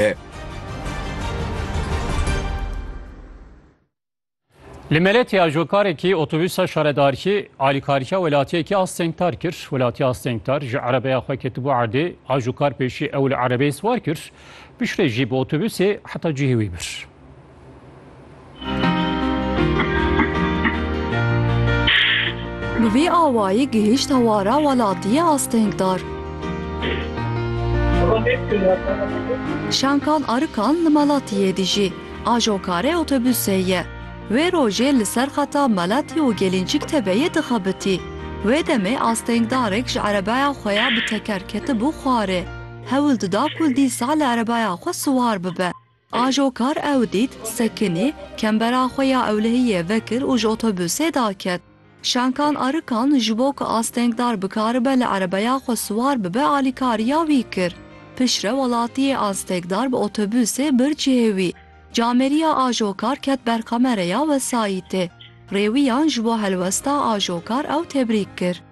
e. Li Meletê ajokarekî otobûsa şaredarkî alîkariya welatiyekî a stengtar kir. Welatiya stengtar ji erebeya xwe ketibû erdê. Ajokar pêşî ew li erebeyê siwar kir. Piştre jî bi otobûsê heta cihê wî bir. Bi vî awayî gihîşt hewara welatiyê astengdar. Şankan Arikan li Meletiyê dijî. Ajokare otobusê ye. Wê rojê li ser xeta Meletî û Gelîncik Tebeyê dixebitî. Wê demê astengdarek ji erebeya xwe ya bi teker ketibû xwarê. Hewl dida ku dîsa li erebeya xwe siwar bibe. Ajo kar ew dît, sekinî, kembera xwe ya ewlehiyê vekir û ji otobusê daket. Şankan Arikan ji bo ku astengdar bikaribe li erebeya xwe siwar bibe alîkariya wî kir. Piştre welatiyê astegdar bi otobusê bir cihê wî. Cameriya ajo kar ket ber kamereya wesayîtê. Rêwiyan ji bo helwesta ajo kar ew tebrîk kir.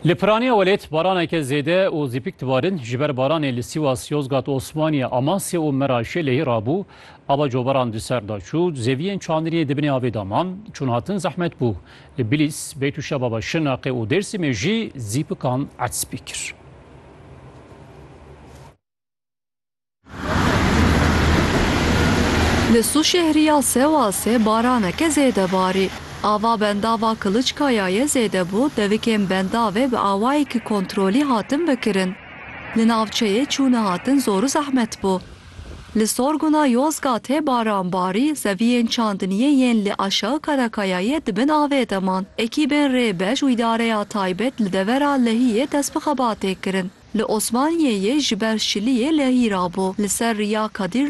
Li Piraniya Welêt baraneke zêde û zîpik dibarin. Ji ber baranê li Sîwas, Yozgat, Osmaniye, Amasya û Meraşê lehî rabû. Ava coberan di ser da çû, zeviyên çandiniyê di binê avê de man. Çûnhatin zehmet bû. Li Bilîs, Beytûşebaba, Şirnexê û Dêrsimê jî zîpikan etspî kir. Li Sûşehriya Sewasê baraneke zêde barî. Ava bendava Kiliçkayayê zêde bû, devikên bendavê bi awayekî kontrolî hatin vekirin. Li navçeyê çûne hatin zor û zehmet bû. Li Sorgûna Yozgatê baran barî, zeviyên çandiniyê yên li Aşağı Karakayayê di bin avê de man. Ekîbên rê beş û îdareya taybet li devera Lehiyê dest bi xebatê kirin. Li Osmaniyeyê ji ber şiliyê lehî rabû. Li ser riya Kadir